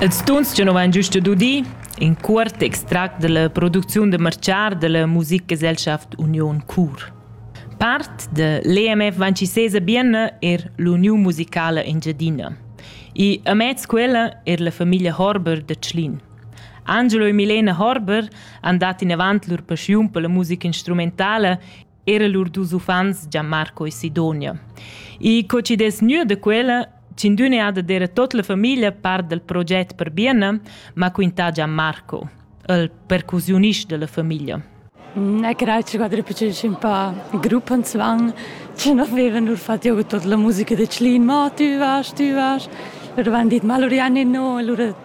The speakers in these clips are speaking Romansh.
Els tuns che nu vain güsta dudi, in cuort extract da la producziun da marchar da la Musikgesellschaft Union Chur. Part da l'EMF Vancisese Bienna er l'Uniun musicala Engiadina. I amez quella er la famiglia Horber da Tschlin. Angelo e Milena Horber han dat in avant lur paschiun per la musica instrumentale era lur dus uffants Gianmarco e Sidonia. I cocidess gnü da quella Cindün è ada dera tot la famiglia part del proget per Bienna, ma quintà Gianmarco, il percusionist della famiglia. Na grazie quadra piaceva un po' gruppo in svan, ci non avevano nur fatto io tutta la musica di Clin, ma tu vas, tu vas, però avevano detto ma allora no, allora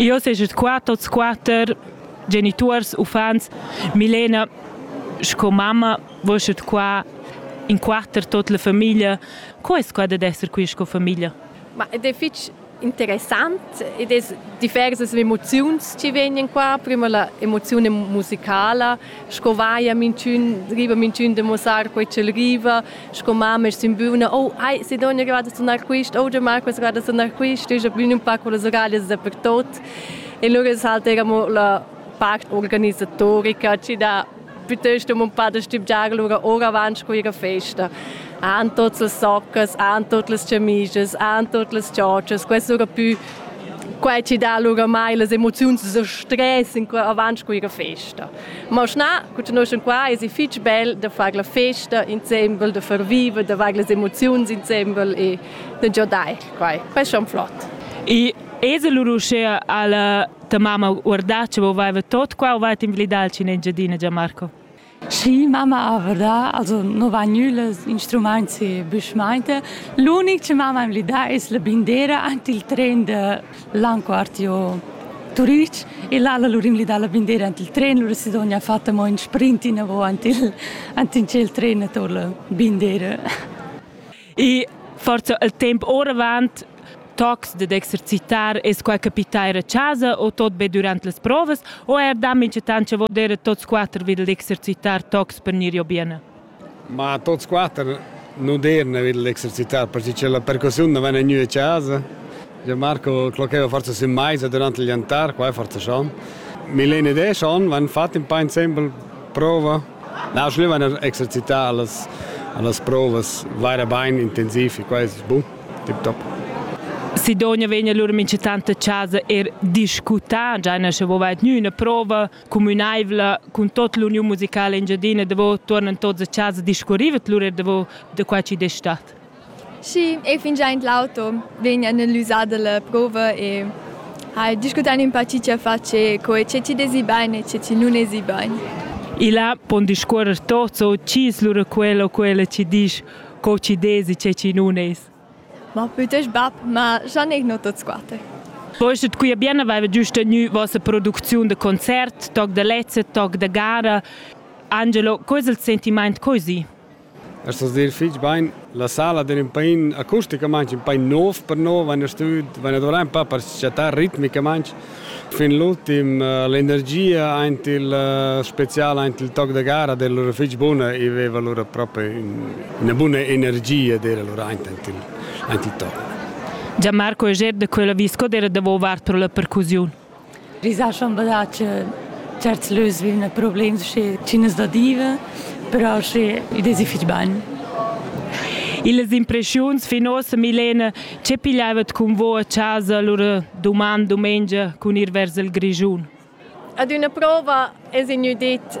Io seget qua tots quatter genituors, uffants. Milena sco mamma voschet qua in quatter tot la famiglia. Co es quai dad esser qui sco famiglia? Ma ed è fich interessant ed es diversas emoziuns chi vegnan qua. Prima la emoziun musicala, sco vaia mintun riva mintun de mussar quei ch'el riva sco mamma simbuna oh ai se dogna grada sonar quist oh de mar questa grada sonar quist ich bin un paco les orales dappertot e loro salta mo la part organisatorica ci da piuttosto mon padre stipgiar lura ora avanti con ihre festa an tots les soccas, an tot les cemises, an tot les ciocias, questo era più Quai ci dà oramai las emoziuns e stress in qua avant cu ir a festa. Ma schnà, cu noi sun qua, es fich bel da far la festa insembel, da far viva, da far las emoziuns insembel e da giodair quai. Pescha flot. E es lur uschea alla ta mamma guardà, che vo vaiva tot qua o vaita invilidà in Engiadina, Gianmarco? Schi, mamma avra, also no va nüles instrumaints e büschmainte. L'unic che mamma am li dà es la bindera ant il tren da Landquartier Turich e là lur im li dà la bindera ant il tren, lura si dogna fatta mo ün sprint inavo ant il ant in tschel tren ator la bindera. E forza il temp oravant tocs dad exercitar es quai capità a chasa o tot be durant las provas o eir da minchatant cha voder tots quatter vil exercitar tocs per gnir jo bene? Ma tots quatter nu derna vil exercitar perché che la percussiun non vene gnü a chasa. Gianmarco clocheva forza sün maisa durant il jantar, qua è forza schon. Milene e Deschon van fat un pa insembel prova Na, schluevan er exercitar las, las provas vaira bain intensiv e quai è bun, tip top. Sidonia vegn lur minchetanta chasa er discutà, già na sche vovait gnü üna prova cumünaivla cun tot l'uniun musicala engiadina davo tuornan tots a chasa discurrivet lur er davo da qua chi d'es stat. Schi, ei fingia in l'auto, vegn analisà dalla prova e ha discutà ün pa chi chia fa che co e che chi desi bain e che chi nun esi bain. Il ha pon discuorrer tots o chi's lura quel o quella chi disch co chi desi che chi nun es. Ma pütësch bap, ma scha neir no tots quatter. Poi sut quia bien aveva giüst tgnü vossa producziun da concert, toc da lezza, toc da gara. Angelo, co es il sentimaint così? Per sa dir fich bain, la sala d'ün pain acusticamaing ün pain nouv per noi, vaina stüd, vaina dovrà ün pa per s-chattar ritmicamaing. Fin l'ultim l'energia aint il special aint il toc da gara d'era lura fich buna, i veva lura propi üna buna energia d'era lura aint aint il aint il toc. Gian Marco Eger da quella visca d'era davo vart pro la percussiun. Risà chambadà che certs lös vivan a problems sche chinas da diva, però sche id es fich bain. Illas impreschiuns fin ossa, Milena, che pigliavat cun vo a chasa lura duman dumengia cun ir vers il Grischun? Ad üna prova es gnü dit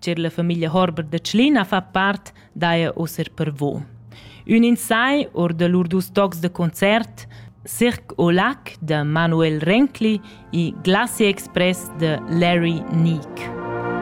Cer la famiglia Horber da Tschlina fa part daja oser per vo. Ün in sai or da lur dus tocs de concert, Cirque au Lac de Manuel Renkli e Glacier Express de Larry Neek.